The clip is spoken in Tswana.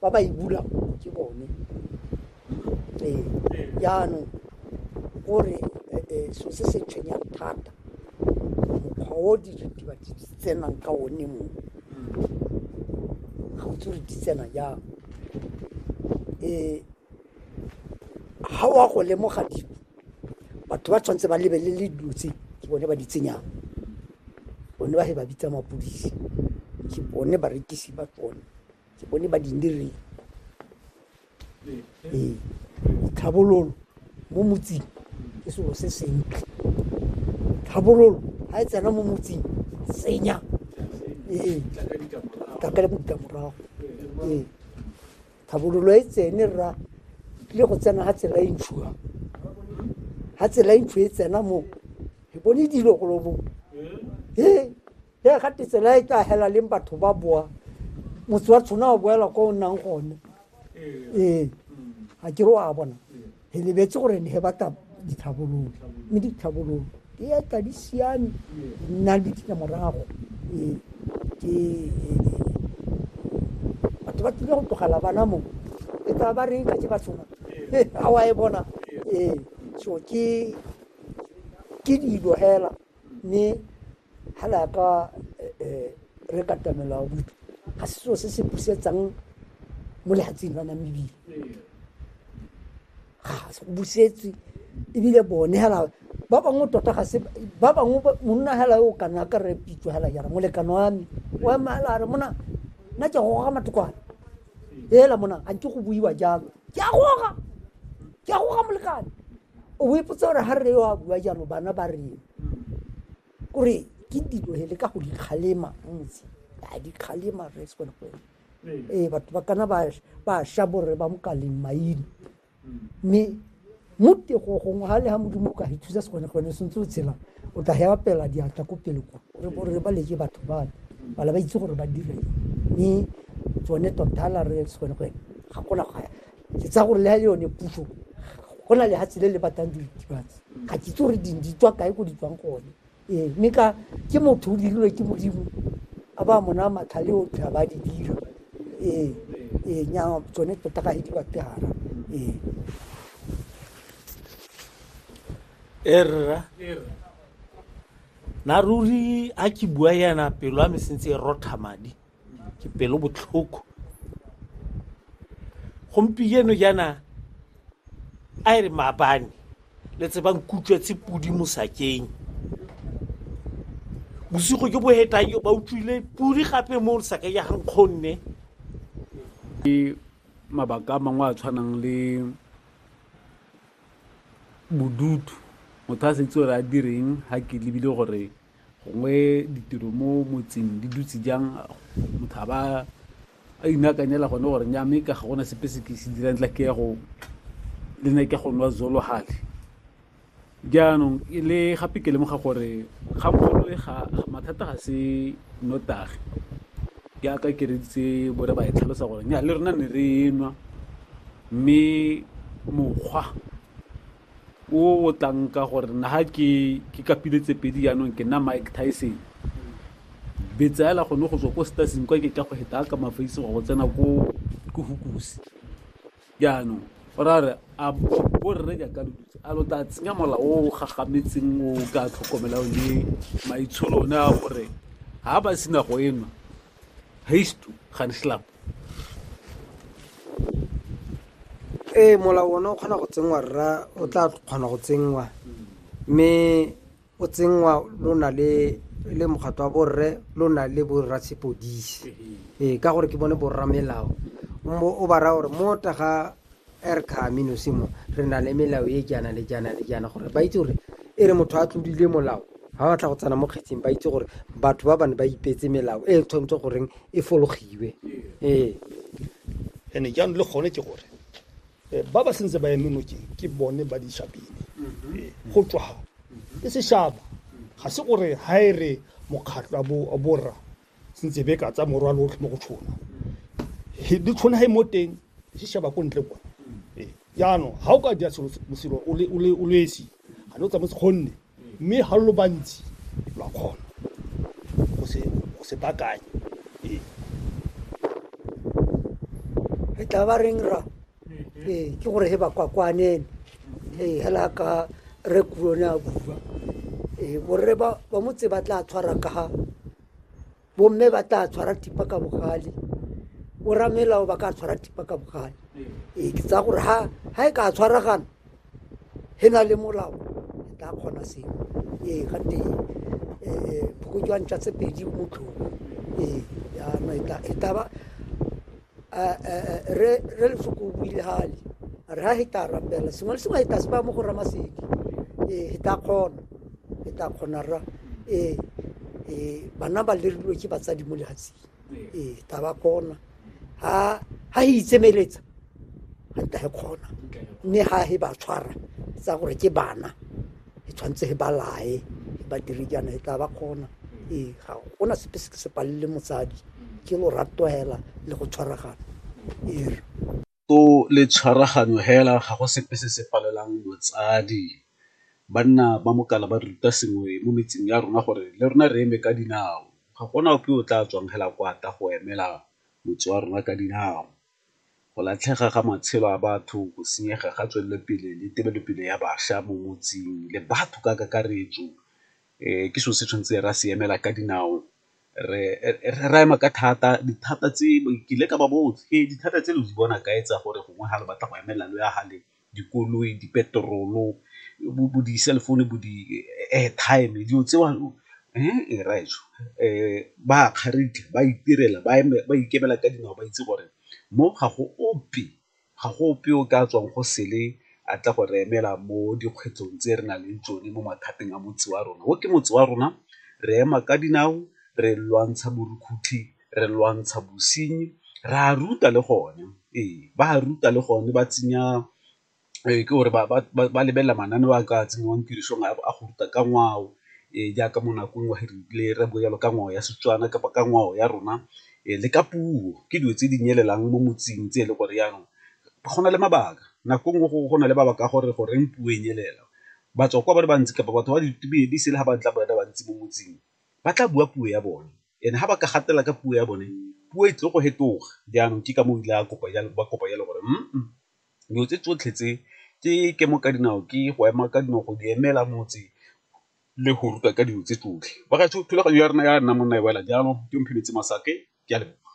ba ba e bulang ke bone ee jaanong gore so se se tshwenyang thata mokgwa o diritibatsi di tsenang ka one mo ga o tsore di tsena jang um ga wa go lemoga dilo batho ba tshwanetse ba lebelele dilo tse ke bone ba di tsenyang bone ba he ba bitsa mapodisi ke bone barekisi ba tsone ke bone ba dindireng ee tlhabololo mo motseng ke selo se sentle tlhabololo ga e tsena mo motseng senya ee ka ka ditlamorago ee tlhabololo e tsene rra le go tsena ga tsela e ntshuwa ga tsela e ntshu e tsena mo ke bone dilo golobo ee ya ga tsela e ka hela leng batho ba boa motse wa tshwana wa boela ko o nnang gone ee ga ke re wa bona re lebetse gore ne ba tla ditlhabololo mme ditlhabololo di etla di siame di nna le ditlamorago ee ke batho ba tlile go tlogela bana mo e tla ba reng ka tse ba tshwana a wa e bona ee so ke ke dilo hela Mme ga re ya ka re katamela wa botho ga se seo se se busetsang mo lehatseng la namibile ga se go busetswe ebile bone hela ba bangwe tota ga se ba bangwe monna hela o kana ka re pitso hela jara molekano wa me o ema hela re mona nna ke goga matokwane hela mona ga nke go buiwa jalo ke a goga ke a goga molekane o ipotsa gore ga re yo a bua jalo bana ba reng kore ke dilo hele ka go dikgalema motse a dikgalema re se kone go ee batho ba kana ba ba sha borre ba mokaleng maina mme mo tego gongwe ga le ga modimo ka ithusa se kone gone sentse o tshela o tla hewa pela diatla ko pele kwa re bo re ba leke batho ba bala ba itse gore ba dire mme tsone totala re se kone go ga gona go Ke tsaya gore le yone puso go na lehatshe le le batlang diritibatsi ga ke itse gore ding di tswa kae ko di tswang gone ee mme ka ke motho o dirilwe ke modimo a ba mona matlhale o tlha ba di dira ee ee nya tsone tota ga e di bategara ee erra na ruri a ke bua yana pelo a me sentse e rotha madi ke pelo botlhoko gompieno jaana a e re maabane le tsebang kutswetse pudi mosakeng bosigo jo bo hetang jo ba utlwile pudi gape mo saka ya gankgonne ke mabaka a mangwe a tshwanang le bodutu motho a setse gore a direng ga ke lebile gore gongwe ditiro mo motseng di dutse jang motho a ba a inakanyela gone gore nya mme ka ga gona sepe se ke se dirang tla ke ya go le ne ke go nwa zolo gale jaanong e le gape ke lemoga gore ga mogolo e ga mathata ga se notagi jaaka ke reditse bore ba e tlhalosa gore nya le rona ne re nwa mme mokgwa o o tlang ka gore na ha ke ke kapile tse pedi yaanong ke nna mike tyson betsaela gone go tswa ko staseng kwa ke tla go heta ka mafaise go tsena ko ko hukusi jaanong o ra re a borre jaaka lo dutse a lo tla tsenya mola o gagametseng o ka tlhokomelang le maitsholo one a gore ha ba sena go enwa haystu gaan slap ee molao one o kgona go tsenngwa rra o tla kgona go tsenngwa mme o tsenngwa lo na le le mokgatlo wa borre lo na le borra sepodisi ee ka gore ke bone borra melao o ba raya gore mo taga Er ka amino se mo, re na le melao e jaana le jaana le jaana, gore ba itse gore e re motho a tlodile molao, ha ba tla go tsena mo kgetseng ba itse gore batho ba bane ba ipetse melao e tshwanetse goreng e fologiwe. Ee. Ene jaanong le gone ke gore eh, ba ba sentse ba eme nokeng ke bone ba dishabine mm-hmm. eh, go tswa mm-hmm. e seshaba ga se gore ha e re mokgatlho a borra sentse be ka tsa morwalo otlhe mo go tshona di tshwana ha e mo teng di sheba ko ntle kwa ee, jaanong ga o ka dira selo o le esi ga ne o tsamotse kgonne mme ga lo bantsi lwa kgona go se bakanye ee re tla ba reng ra ee ke gore he ba kwakwanene ee hela ka re kurone a bua ee borre ba ba motse ba tla tshwara ka ga bomme ba tla tshwara tipa ka bogale boramelao ba ka tshwara tipa ka bogale ee ke tsaya gore ha ha e ka tshwaragana he na le molao e tla kgona seo ee ga te phokojwang tsa tse pedi motlhoko ee yana e tla ba re lefoko o buile hale a re ha he tla rapela sengwe le sengwe he tla se ba mo go ramasedi ee he tla kgona he tla kgona ra ee ee bana ba lerilwe ke batsadi mo lehatsing ee tla ba kgona ha ha he itsemeletsa ga ntla he kgona mme ha he ba tshwara tsa gore ke bana e tshwanetse e ba lae e ba dire jaana e tla ba kgona ee ga gona sepe se ke se palele motsadi ke lorato hela le go tshwaragana ee to le tshwaraganyo hela ga go sepe se se palelang motsadi banna ba mokala ba ruta sengwe mo metseng ya rona gore le rona re eme ka dinao ga gona ope o tla tswang hela kwata go emela motse wa rona ka dinao go latlhega ga matshelo a batho, go senyega ga tswelelopele le tebelopele ya bašwa mo motseng le batho ka kakaretso ke selo se tshwanetse ra se emela ka dinao. Re ema ka thata, dithata tse ke ile ka ba botsa ke re dithata tse lo di bona kae tsa gore gongwe ga le batla go emelela lo ya ga le? dikoloi dipeterolo bo di-cell phone bo di-airtime dilo tseo rraaetsho ba a kgaratlha ba itirela ba ikemela ka dinao ba itse gore mo ga go ope ga go ope o ka tswang go sele a tla go re emela mo dikgwetlhong tse re nang le tsone mo mathateng a motse wa rona o ke motse wa rona re ema ka dinao re lwantsha borukgutlhi re lwantsha bosenyi re a ruta le gone ee ba ruta le gone ba tsenya ke gore ba lebelela mananeo a ka tsenngwang tirisong a go ruta ka ngwao e jaaka mo nakong wa le re bo jalo ka ngwao ya Setswana kapa ka ngwao ya rona e le ka puo ke dilo tse di nyelelang mo motseng tse e le gore jaanong go na le mabaka nako nngwe go na le mabaka a gore goreng puo e nyelela batswa kwa ba le bantsi kapa batho ba di sele ga ba tla ba le bantsi mo motseng ba tla bua puo ya bone ene ga ba ka gatela ka puo ya bone puo e tle go hetoga jaanong ke ka mo ile ba kopa jalo gore mm dilo tse tsotlhe tse ke ke mo ka dinao ke go ema ka dinao go di emela motse le go ruta ka dilo tse tsotlhe ba ga thulaganyo ya rona ya nna monna e wela jalo ke mphemetse masake ke a leboga